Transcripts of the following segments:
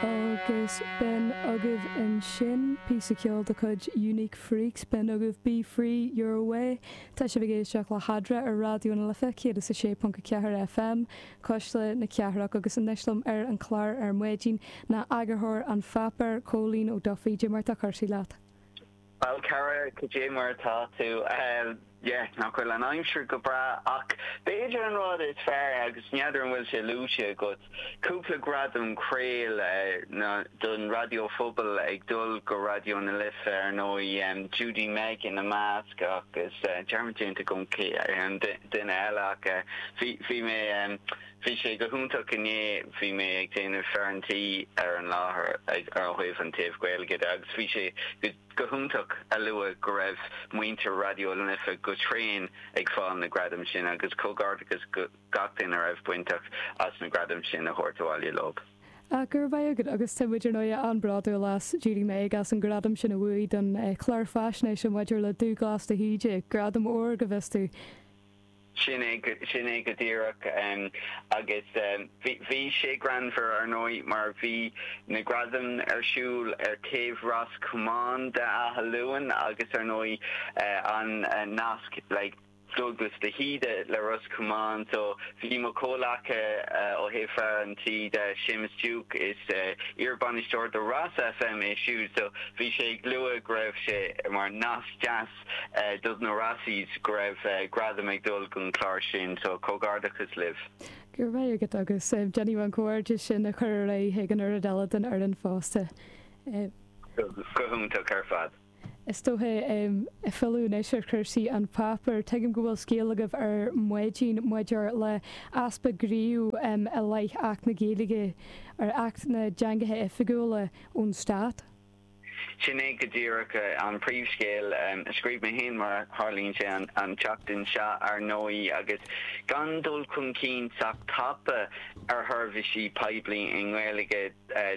Agus b'in agaibh ansin píosa ceoil de chuid Unique Freaks, b'in agaibh Be Free, Your Way. Tá sibh ag éisteacht le hAdra ar Raidió na Life 106.4 FM, cuisle na cathrach, agus anois liom ar an chlár ar maidin ná eagarthóir an pháipéir, Cóilín Ó Dufaigh. Dé mar atá cúrsaí leat. Bhuel, a chara, cad é mar atá tú? Yeh, nach bhfuil an aimsir go breá, ach b'fhéidir an rud is fearr, agus n'fheadar an bhfuil sé luaite agat, cúpla gradam Craol don raidió phobail ag dul go Raidió na Life, ar ndóigh, Judy-Meg ina measc, agus dearmad déanta agam cé an duine eile, ach bhí mé. Bhí sé go hiontach inné, bhí mé ag déanamh fear an tí ar an láthair ag ar thaobh an taobh Gaeilge de agus bhí sé go hiontach a lua go raibh muintir Raidió na Life go tréan ag fáil na gradaim sin agus comhghairdeachas go gach duine a raibh bainteach as na gradaim sin a thabhairt abhaile leob. Ach go raibh maith agat agus tá muid ar ndóigh an-bhródúil as Judy Meg as an gradam sin a bhuaigh don chlár faisnéise maidir le Dúglas de hÍde, gradam óir go bhfios domh. Sin é go díreach. Agus bhí sé greannmhar, ar ndóigh, mar bhí na gradaim ar siúl ar taobh Ros Comáin d'Áth Luain agus, ar ndóigh, an nasc Douglas de hÍde le Ros Comáin so bhí mo chomhleacaí ó thaobh fear an tí de, Séamus Duke, is iar-bainisteoir do Ros FM é siúd, so bhí sé ag lua go raibh sé mar nasc deas. dos na Rossies go raibh gradam ag dul gon chlár sin so comhghairdeachas libh. Go raibh maith agat agus déanfaidh mé an comhghairdeas sin a chur ar aghaidh chuig an oiread eile den fhoireann fosta. Go hiontach ar fad. Is dócha, ag filleadh anois ar chúrsaí an pháipéir, tuigim go bhfuil scéal agaibh ar maidin maidir le easpa gnímh i leith Acht na Gaeilge, ar Acht na dTeangacha Oifigiúla, ón Stát. Sin é go díreach an príomhscéal a scríobh mé féin, mar a tharlaíonn sé, an tseachtain seo, ar ndóigh, agus gan dul chun cinn sách tapa ar sheirbhísí poiblí i nGaeilge.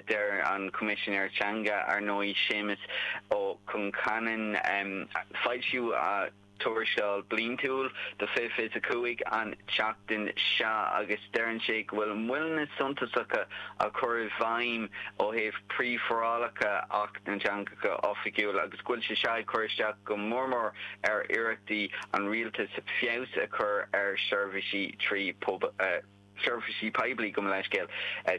Deir an Coimisinéir Teanga, ar ndóigh, Séamas Ó Concheanainn, foilsíodh. tuarascáil bliantúil do 2025 an tseachtain seo agus deireann sé go bhfuil moilleanna suntasacha á chur i bhfeidhm ó thaobh príomhfhorálacha Acht na dTeangacha Oifigiúla agus go bhfuil sé seo ag cur isteach go mór mór ar iarrachtaí an Rialtais feabhas a chur ar sheirbhísí trí seirbhísí poiblí, gabh mo leithscéal,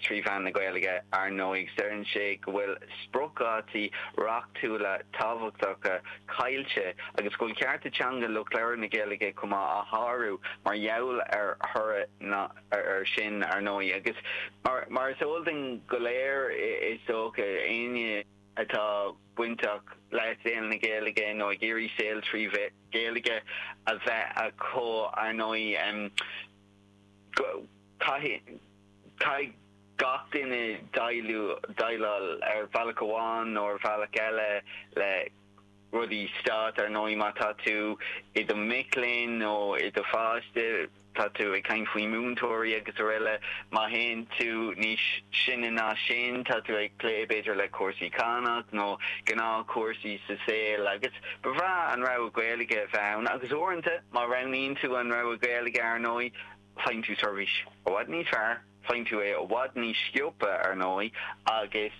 trí mheán na Gaeilge. Ar ndóigh, deireann sé go bhfuil spriocdhátaí reachtúla tábhachtacha caillte agus go bhfuil cearta teanga lucht labhartha na Gaeilge chomh maith á shárú mar gheall ar thoradh air sin. Ar ndóigh, agus mar is eol dúinn go léir, is dócha, éinne atá bainteach le saol na Gaeilge nó ag iarraidh saol trí Ghaeilge a bheith acu, ar ndóigh, Caithfidh gach duine déileáil ar bhealach amháin nó ar bhealach eile le rudaí stáit, ar ndóigh, má tá tú i do mhac léinn nó i do pháiste, tá tú ag caint faoi mhúinteoirí agus aroile. Má théann tú níos sine ná sin, tá tú ag plé b'fhéidir le cúrsaí cánach nó gnáthchúrsaí sa saol. Ba bhreá an rogha Gaeilge a bheith ann, agus uaireanta, má roghnaíonn tú an rogha Gaeilge, ar ndóigh, faigheann tú seirbhís i bhfad níos fearr, faigheann tú é i bhfad níos sciobtha, ar ndóigh, agus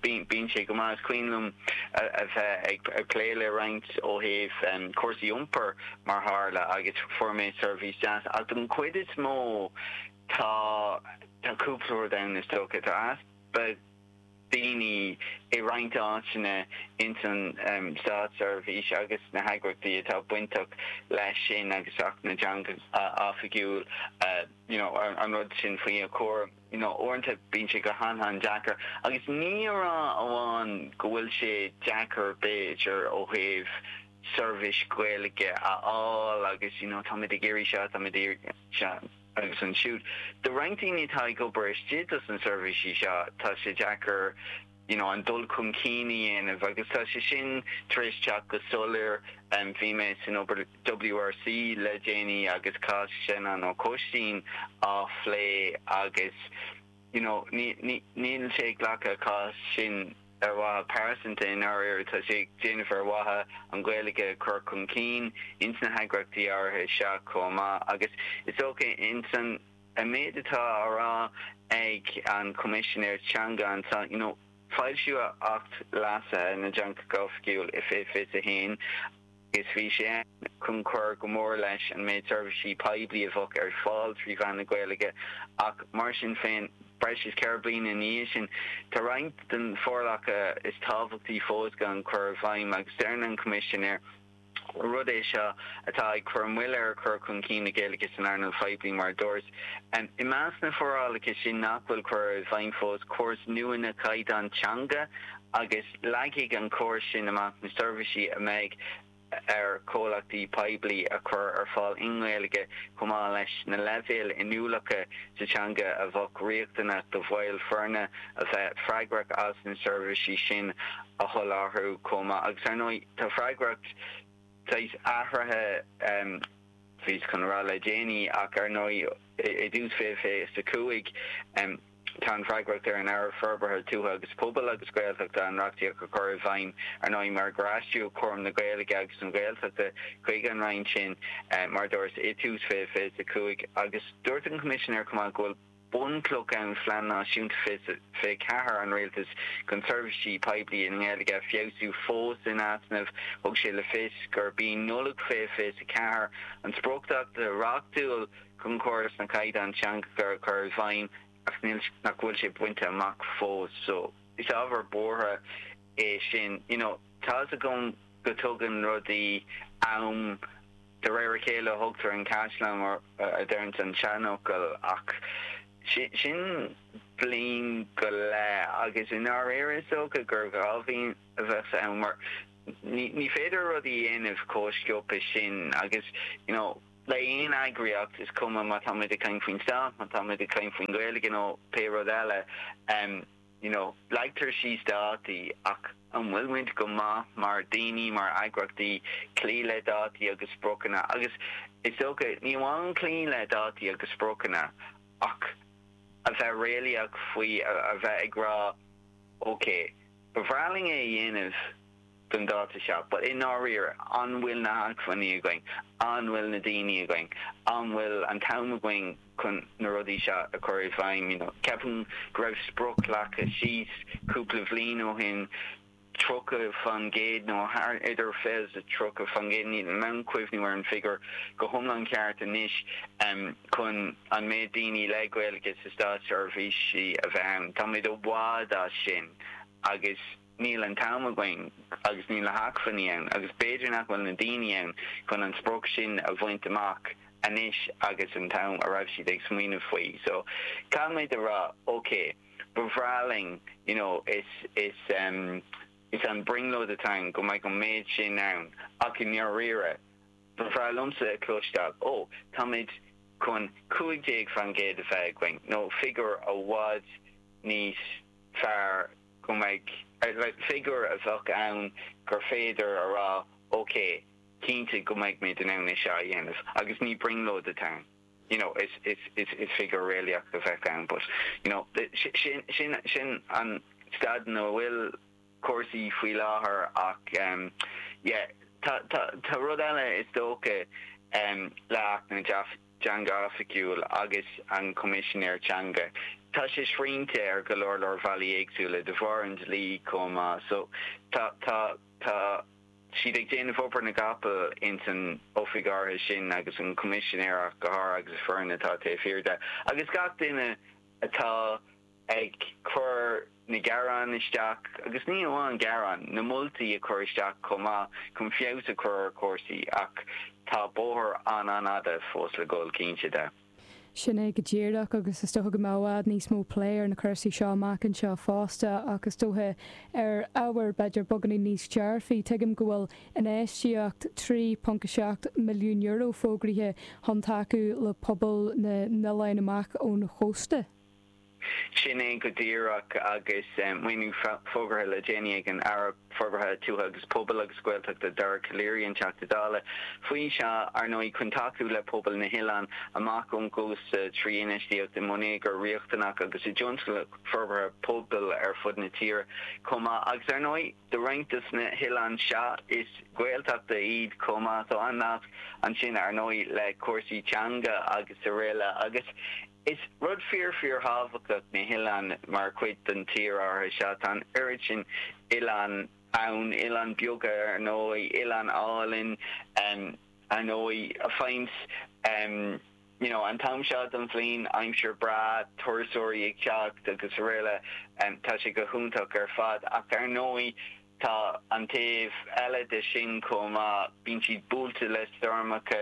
bíonn sé go maith. Is cuimhin liom a bheith ag plé le roinnt ó thaobh cúrsaí iompair, mar tharla, agus fuair mé seirbhís deas. Ach don chuid is mó, tá cúpla rud ann, is dócha. Tá easpa. daoine i roinnt áiteanna ins an státseirbhís agus na heagraíochtaí atá bainteach leis sin agus Acht na dTeangacha Oifigiúil you know an rud sin faoi a chúram you know uaireanta bíonn sé go han-, an-deacair agus ní a rá amháin go bhfuil sé deacair b'fhéidir ó thaobh seirbhís Ghaeilge a fháil agus you know táimid ag iarraidh seo táimid ag iarraidh seo. agus siúd. Do roinnt daoine atá ag obair istigh dos na seirbhísí seo, tá sé deacair you know an dul chun cinn a dhéanamh agus tá sé sin tar éis teacht go soiléir. Bhí mé san obair WRC le déanaí agus cás Senan Ó Coistín á phlé agus. you know níl sé ag glacadh an chás sin ar mhaithe pearsanta i ndáiríre, tá sé á dhéanamh ar mhaithe an Ghaeilge a chur chun cinn ins na heagraíochtaí áirithe seo chomh maith agus is dócha ins an méid atá á rá ag an Choimisinéir Teanga anseo you know foilsíodh Acht Leasaithe na dTeangacha Oifigiúil i 2021 Is bhí sé ann chun cur go mór leis an méid seirbhísí poiblí a bheadh ar fáil trí mheán na Gaeilge, ach mar sin féin, breis is ceithre bliana ina dhiaidh sin, tá roinnt de na forálacha is tábhachtaí fós gan cur i bhfeidhm, agus deireann an Coimisinéir gur rud é seo atá ag cur moille ar chur chun cinn na Gaeilge san earnáil phoiblí, mar a dúras. I measc na bhforálacha sin nach bhfuil curtha i bhfeidhm fós, córas nua na gcaighdeán teanga, agus leagfaidh an córas sin amach na seirbhísí a mbeidh ar chomhlachtaí poiblí a chur ar fáil i nGaeilge chomh maith leis na leibhéil inniúlachta sa teanga a bheadh riachtanach do bhaill foirne a bheadh freagrach as na seirbhísí sin a sholáthar chomh maith. Agus, ar ndóigh, tá freagracht saghas athraithe, bhíos chun a rá le déanaí, ach, ar ndóigh, i dtús 2025. Tá an fhreagracht ar an Aire Forbartha Tuaithe agus Pobail agus Gaeltachta an reachtaíocht a chur i bhfeidhm, ar ndóigh, mar gur aistríodh cúram na Gaeilge agus na Gaeltachta chuig an Roinn sin, mar a dúras, i dtús 2025, agus dúirt an Coimisinéir chomh maith go bhfuil bunchloch an Phlean Náisiúnta 2024 an Rialtais chun seirbhísí poiblí i nGaeilge a fheabhsú fós in easnamh. Thug sé le fios gurb í Nollaig 2024 an spriocdháta reachtúil. Chun córas na gcaighdeán teanga a chur i bhfeidhm, ach níl sé, nach bhfuil sé bainte amach fós. So, is ábhar buartha é sin. You know, tá's agam go dtógann rudaí am de réir a chéile, a thógtar an caisleán mar a deireanns an seanfhocal, ach sin bliain go leith agus i ndáiríre is dócha gur dhá bhliain a bheadh ann mar ní féidir rudaí a dhéanamh chomh sciobtha sin agus, you know, le haon eagraíocht, is cuma má táimid ag caint faoin stát, má táimid ag caint faoin Ghaeilge nó pé rud eile, you know, leagtar síos dátaí ach an bhfuil muid go maith mar dhaoine, mar eagraíochtaí, cloí le dátaí agus spriocanna agus is dócha, ní amháin cloí le dátaí agus spriocanna ach a bheith réalaíoch faoi, a bheith ag rá, okay, ba bhreá linn é a dhéanamh. don dáta seo. But i ndáiríre, an bhfuil na hacmhainní againn? An bhfuil na daoine againn? An bhfuil an t-am againn chun na rudaí seo a chur i bhfeidhm, you know? Ceapaim go raibh sprioc leagtha síos cúpla bhliain ó shin, 30 fan gcéad nó thart, idir 20, 30 fan gcéad, níl mé in ann cuimhniú ar an figiúr go hiomlán ceart anois, chun an méid daoine le Gaeilge sa státseirbhís a bheith ann. Táimid i bhfad as sin agus. Níl an t-am againn agus níl na hacmhainní ann agus b'fhéidir nach bhfuil na daoine ann chun an sprioc sin a bhaint amach anois agus an t-am a raibh siad ag smaoineamh faoi. So, caithfidh muid a rá, ok, ba bhreá linn, you know, is, is, em, is an brionglóid atá ann go mbeadh an méid sin ann ach i ndáiríre, ba bhreá liomsa a chloisteáil, ó, táimid chun cúig déag fán gcéad a bheith againn nó figiúr i bhfad níos fearr. go mbeidh figiúr a bheadh ann gur féidir a rá, OK, cinnte go mbeidh muid in ann é seo a dhéanamh agus ní brionglóid atá ann. You know, is figiúr réalaíoch a bheadh ann but, you know, sin an staid ina bhfuil cúrsaí faoi láthair ach, yeah, tá rud eile is dócha le hAcht na. Teanga Oifigiúil agus an Coimisinéir Teanga. Tá sé srianta ar go leor leor bhealaí éagsúla de bharr an dlí chomh maith. So, tá, tá, tá siad ag déanamh obair na gcapall ins an oifig áirithe sin agus an Coimisinéir ach go háirithe agus an fhoireann atá taobh thiar de agus gach duine atá ag cur na gearán isteach, agus ní hamháin gearán, na moltaí a chur isteach chomh maith, chun feabhas a chur ar chúrsaí, ach tá bóthar an-an-fhada fós le dhul, cinnte de. Sin é go díreach, agus is dócha go mbeidh i bhfad níos mó plé ar na cúrsaí seo amach anseo fosta, ach is dócha ar ábhar, b'fhéidir, beagáinín níos dearfaí. Tuigim go bhfuil infheistíocht €3.7 milliún fógraithe chun tacú le pobal na n-oileáin amach ón chósta. Sin é go díreach, agus maoiniú fógartha le déanaí ag an Aire Forbartha Tuaithe agus Pobail agus Gaeltachta, Dara Calleary, an Teachta Dála faoi seo, ar ndóigh, chun tacú le pobail na hoileáin amach ón gcósta trí infheistíocht i mbonneagar riachtanach agus i dtionscnaimh forbartha pobail ar fud na tíre chomh maith. Agus ar ndóigh, do roinnt de na hoileáin seo, is Gaeltachta iad chomh maith, tá an nasc ansin, ar ndóigh, le cúrsaí teanga agus araile. Agus. Is rud fíor-fíorthábhachtach na hoileáin mar chuid den tír seo. Sea, tá an oiread sin oileán ann, oileáin bheaga, ar ndóigh, oileáin álainn, ar ndóigh, a fhaigheanns you know an t-am seo den bhliain, aimsir bhreá, turasóirí ag teacht agus araile, tá sé go hiontach ar fad. Ach ar ndóigh, tá an taobh eile de sin chomh maith, bíonn siad buailte le stoirmeacha,